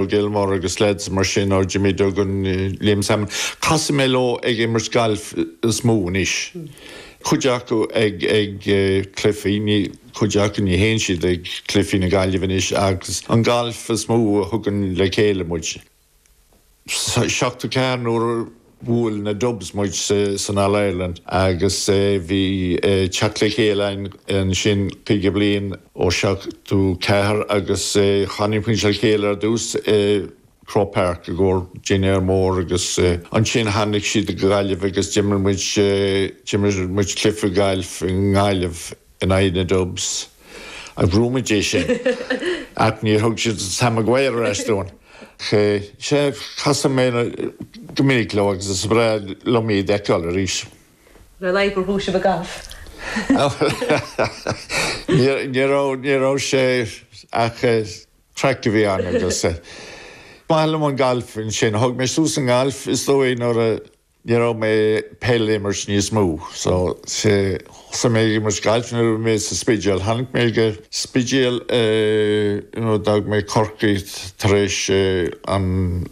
Ó Gilmore agus leaids mar sin ó Jimmy Duggan, Liam Sammon, casfaidh mé leo ag imirt gailf is mó anois. Cuid acu ag ag cluichí, ní, cuid acu ní théann siad ag cluichí na Gaillimhe anois agus an gailf is mó a thugann le chéile muid. Seachtó ceathair nuair Bhuail na Dubs muid san All-Ireland agus bhí teacht le chéile againn ansin caoga bliain ó seachtó ceathair agus tháinig muid le chéile ar dtús i Croke Park i gcomhair dinnéar mór agus ansin tháinig siad go Gaillimh agus d'imir muid d'imir muid cluiche gailf i nGaillimh. in aghaidh na Dubs. Ghnóthaigh muid é sin. Ach níor thug siad Sam Maguire ar ais dúinn. Sea, casadh mé go minic leo agus is breá liom iad a fheiceáil arís. Nár léir gur thug sibh a gcaithreamh? Ní raibh sé ach craic a bhí ann agus is maith liom an galf ansin. Thóg mé suas an galf is dóigh nuair a. Ní raibh mé ag peil a imirt níos mó so thosaigh mé ag imirt gailf nuair a bhí mé sa Spidéal. Tháinig mé go Spidéal you know d'fhág mé Corcaigh tar éis an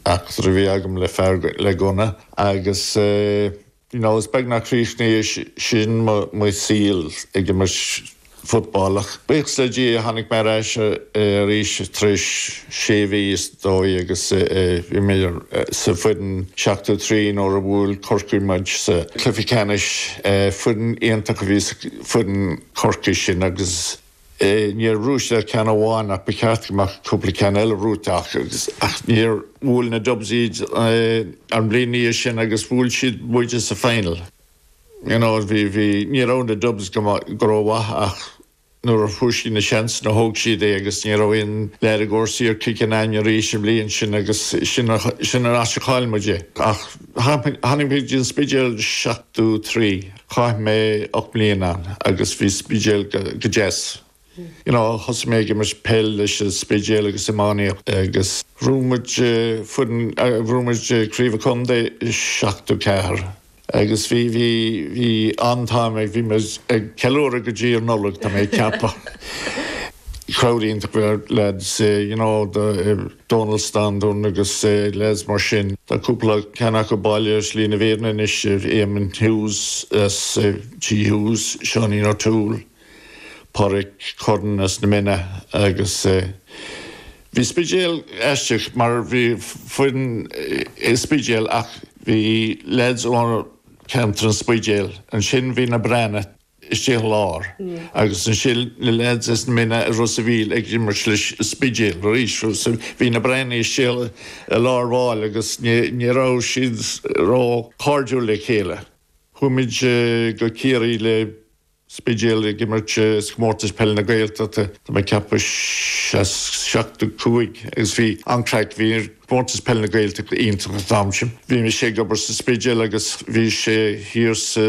eachtra a bhí agam le fear le gunna agus you know is beag nach chríochnaigh sin mo saol ag imirt football ach buíochas le Dia tháinig mé ar ais arís tar éis sé mhí is dóigh agus bhí mé sa foireann 73 nuair a bhuail Corcaigh muid sa chluiche ceannais. Foireann iontach a bhí sa foireann Chorcaí sin agus níor ghnóthaigh siad ach ceann amháin ach ba cheart go mbeadh cúpla ceann eile gnóthaithe acu ach níor bhuail na Dubs iad an bhliain ina dhiaidh sin agus bhuail siad muide sa final. you know bhí, bhí, ní raibh na Dubs go maith, go rómhaith ach nuair a fuair siad na seansanna thóg siad é agus ní raibh aon lear i gcúrsaí ar kicking againn arís an bhliain sin agus sin, sin an áit a chaill muid é. Ach tháinig, tháinig mé go dtí an Spidéal seachtó trí, chaith mé ocht mbliana ann agus bhí Spidéal go, go deas. You know, thosaigh mé ag imirt peil leis an Spidéal agus iománaíocht agus ghnóthaigh muid foireann, ghnóthaigh muid craobh an chontae i 74 agus bhí, bhí, bhí an-time againn, bhí muid ag ceiliúradh go dtí an Nollaig, tá mé ag ceapadh. Crowd iontach go raibh lads, you know, do Dónal Standún agus lads mar sin. Tá cúpla ceann acu bailithe ar shlí na fírinne anois, Éamonn Hughes as Tigh Hughes, Seáinín O'Toole, Pádraic Curran as na Minna agus eh, bhí Spidéal aisteach mar bhí foireann i Spidéal ach bhí lads ó cheantar an Spidéil, ansin bhí na Breathnaigh istigh i lár agus ansin na lads as na Minna i Ros a' Mhíl ag imirt leis an Spidéal arís so bhí na Breathnaigh istigh i lár baill agus ní raibh siad ró chairdiúil le chéile. Chuaigh muid go Ciarraí le Spidéal ag imirt i gComórtas Peile na Gaeltachta. Tá mé ag ceapadh sa seachtó cúig agus bhí an-chraic. Bhí Comórtas Peile na Gaeltachta iontach an t-am sin. Bhí mise ag obair sa Spidéal agus bhí sé thiar sa,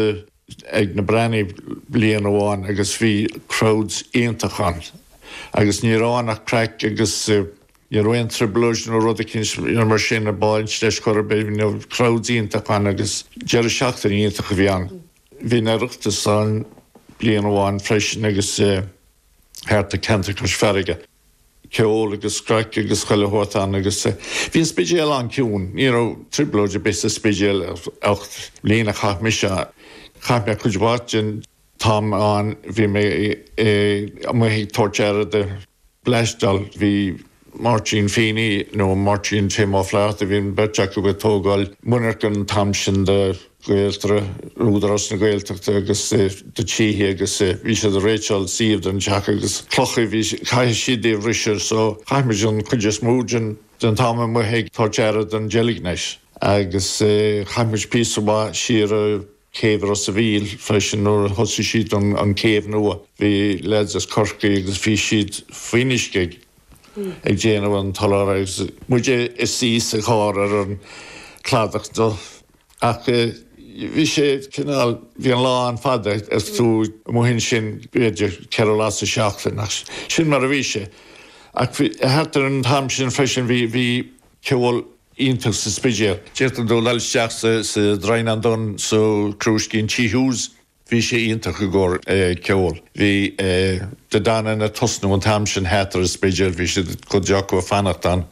ag na Breathnaigh bliain amháin agus bhí crowds iontach ann agus ní raibh ann ach craic agus ní raibh aon trioblóid nó rud eicínt mar sin ag baint leis chor ar bith. Bhí na crowds iontach ann agus deireadh seachtaine iontach a bhí ann. Bhí an Oireachtas ann bliain amháin freisin agus thart ar cheantar Chois Fharraige, ceol agus craic agus chuile shórt ann agus bhí an Spidéal an-chiúin. Ní raibh trioblóid ar bith sa Spidéal an ocht mbliain a chaith mise ann. Chaith mé cuid mhaith den t-am ann, bhí mé amuigh ag tabhairt aire do. bleaisteáil. Bhí Máirtín Feeney nó Máirtín Tim Ó Flatharta, bhí an bheirt acu ag tógáil monarcha an t-am sin do Ghaeltarra, Údarás na Gaeltachta agus do thithe agus bhí siad ag réiteáil suíomh don teach agus clocha a bhí, chaithfeadh siad a bhriseadh so chaith muid an chuid is mó den den t-am amuigh ag tabhairt aire don gelignite agus chaith muid píosa maith siar ar chéibh Ros a' Mhíl freisin nuair a thosaigh siad an céibh nua. Bhí leaids as Corcaigh agus bhí siad faoin uisce ag ag déanamh an tsoláthair agus muide ina suí sa charr ar an gcladach ach bhí sé cineál bhí an lá an-fhada is tú amuigh ansin b'fhéidir ceithre lá sa tseachtain ach sin mar a bhí sé ach bhí thart ar an t-am sin freisin bhí bhí ceol iontach sa Spidéal. D'fhéadfadh tú dul isteach sa Droighneán Donn sa Crúiscín Tí Hughes. Bhí sé iontach i gcomhair ceoil. Bhí Dé Danann ag tosnú an t-am sin thart ar an Spidéal. Bhí siad cuid acu ag fanacht ann.